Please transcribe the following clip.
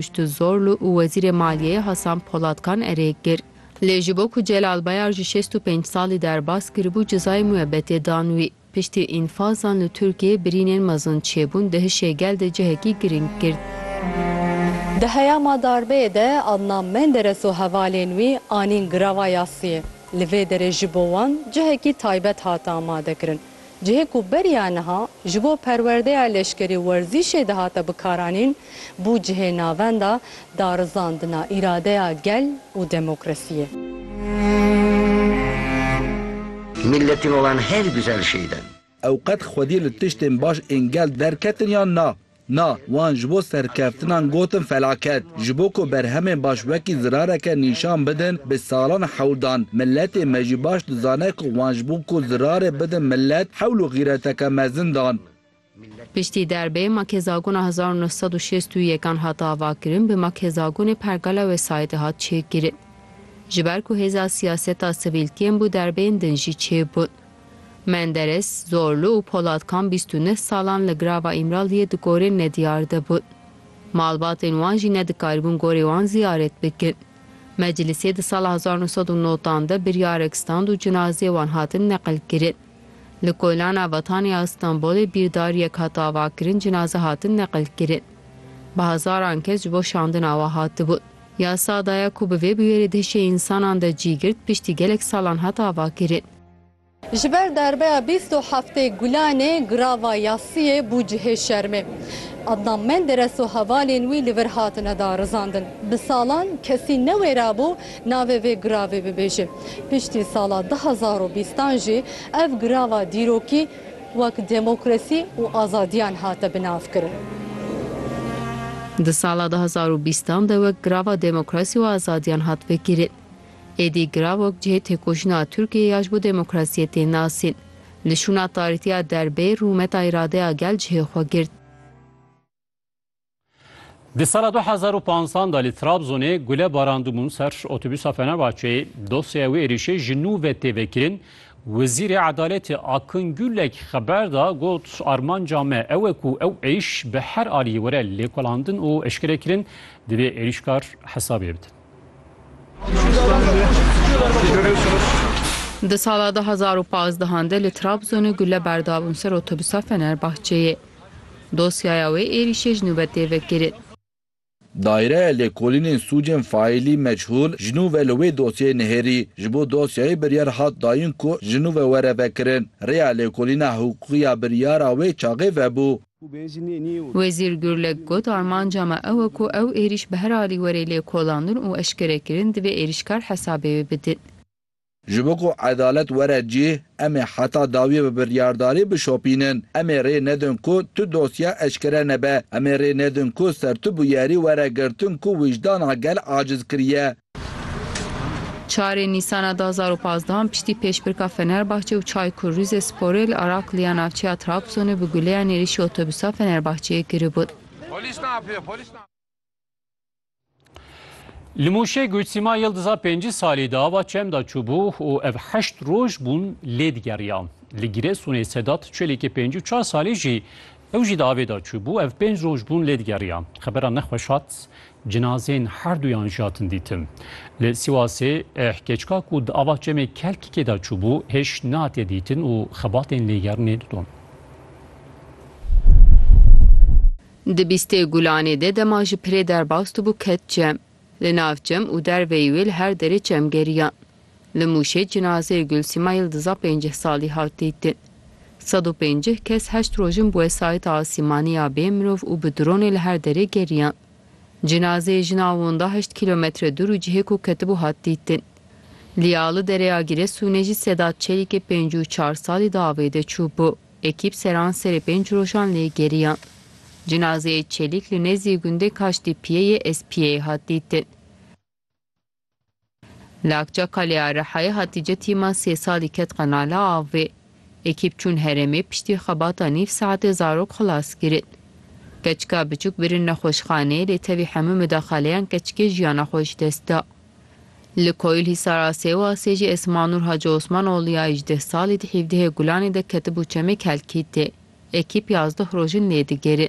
Kûçtuzorlu û Wezîrê Maliyeyê Hasan Polatkan erê kir. Lê ji bo ku Celal Bayar ji şêst û pênc salî derbas kiribû cezayê mûebetê dan wî. Piştî înfazan li Tirkiyeyê birînên mezin çêbûn dihişê gel de cihekî girîng girt. Di heyama darbeyê de Adnan Menderes û hevalên wî anîn girava yasiyê. Li vê derê ji bo wan cihekî taybet hate amadekirin. Cihê ku beriya niha ji bo perwerdeya leşkerî û werzîşê dihate bikaranîn, bû cihê navenda darizandina îradeya gel û demokrasiyê. Milletên olan herî guzel şêy de. Ew qet xwedî li tiştên baş ên gel derketin yan na? Na, wan ji bo serkeftinan gotin felaket. Ji bo ku berhemên baş wekî zirareke nîşan bidin, bi salan hewl dan. Miletê me jî baş dizane ku wan ji bo ku zirarê bidin milet, hewl û xîreteke mezin dan. Piştî derbê Makhêzagona hezar û neh sed û şêst û yek an hat avakirin, bi Makhêzagonê pergala wê sayedê hat çêkirin. Ji ber ku hêza siyaseta sivîlkiyên bû derbeyên din jî çêbûn. Menderes, Zorlu û Polatkan bîst û neh salan li Grava Îmraliyê di gorên nediyar de bûn. Malbatên wan jî nedikaribûn gorê wan ziyaret bikin. Meclisê di sala hezar nû sed û notan de biryarek stand û cinazeyê wan hatin neqilkirin. Li Koylana Vatanê ya Stenbolê bîrdariyek hat avakirin cinaze hatin neqilkirin. Bi hezaran kes ji bo şandina wan hatibûn. Ya Sadaya ku bi vê bûyerê di hişê însanan de cî girt piştî gelek salan hat avakirin. Ji ber darbeya bîst û heftê Gulanê girava yasiyê bû cihê şermê. Adnan Menderes û hevalên wî li vir hatine darizandin. Bi salan kesî newêrabû navê vê giravê bibêje. Piştî sala du hezar û bîstan jî ev girava dîrokî wek demokrasî û azadiyan hate binavkirin. Di sala du hezar û bîstan de wek girava demokrasî û azadiyan hat vekirin. Êdî Gravok cihê têkoşîna Tirkiyeyê ya ji bo demokrasiyê tên nasîn. Li şûna tarîtiya derbê rûmeta îradeya gel cihê xwe girt. Di sala du hezar û panzdan de li Trabzonê gule barandibûn ser otobûsa Fenerbahçeyê, dosyeya wê êrîşê ji nû ve tê vekirin. Wezîrê Edaletê Akın Gürlek xeber da got, Armanca me ew e ku ew êriş bi her aliyê were lêkolandin û eşkerekirin, divê êrîşkar hesabê bidin. Di sala du hezar û pazdeh de li Trabzonê gule berda bûn ser otobûsa Fenerbahçeyê. Dosyaya wê êrîşê ji nû ve tê vekirin. Daîreya Lêkolînên Sûcên Faîlî Meçhûl ji nû ve li wê dosyeyê nihêrî. Ji bo dosyayê biryar hat dayîn ku ji nû ve were vekirin. Rêya Lêkolîna Hiqûqî ya biryara wê çaxê vebû. Wezîr Gurlek got, Armanca me ew e ku ew êrîş bi her alî were lêkolandin û eşkerekirin divê êrîşkar hesabê wê bidin. Ji bo ku edalet were cih, em ê heta dawiyê bi biryardarî bişopînin. Em ê rê nedin ku tu dosye eşkere nebe. Em ê rê nedin ku sertu bûyerî were girtin ku wijdana gel aciz kiriye. Çarê Nîsana du hezar û pazdeh piştî pêşbirka Fenerbahçe û Çaykur Rizesporê li Arakliya navçeya Trabzonê bi guleyan êrîşî otobûsa Fenerbahçeyê kiribûn. Li Mûşê got Sîma Yildiza pêncî salî di ava çem de çûbû û ev heşt roj bûn lê digeriya. Li Giresunê Sedat Çelîkê pêncî û çar salî jî Ew jî di avê de çûbû. Ev pênc roj bûn lê digeriya. Xebera nexweş hat. Cinazeyên herduyan jî hatin dîtin. Li Sîwasê hkêçka ku di ava çemê Kelkikê de çûbû hêj nehatiye dîtin û xebatên lêgerinê didon. Di bîstê gulanê de dema ji pirê derbas dibû ket cem. Li nav çem û derveyî wê li her derê çem geriyan. Li Mûşê cinazeyê Gulsîma Yildiza pêncîh salî hat dîtin. Sed û pêncîh kes heşt rojin bi wesayîta asîmanî ya bê mirov û bi dronê li her derê geriyan. Cinazeyê jina winda heşt kîlometre dûr û cihê ku ketibû hat dîtin. Lîya li dereya Giresunê jî Sedat Çelîkê pêncî û çar salî di avê de çûbû. Ekîp seran serê pênc rojan lê geriyan. Cinazeyê Çelîk li nêzî gundê Kaştîpiyê yê Espiyeyê hat dîtin. Li Akçaka lê a Rihayê Hatîce tîma sê salî ket qenala avê. Ekîp çûn herêmê piştî xebata nîv saetê zarok xilas kirin. Keçika biçûk birin nexweşxaneyê lê tevî hemû midaxaleyan keçikê jiyana xwe ji dest da. Li Koyilhîsara Sêwasê jî Esmanur Hacı Osman oğlu ya îjdeh salî di hîvdehê Gulanê de ketibû çemê Kelkîtê. Ekîp yazdeh roj in lê digere.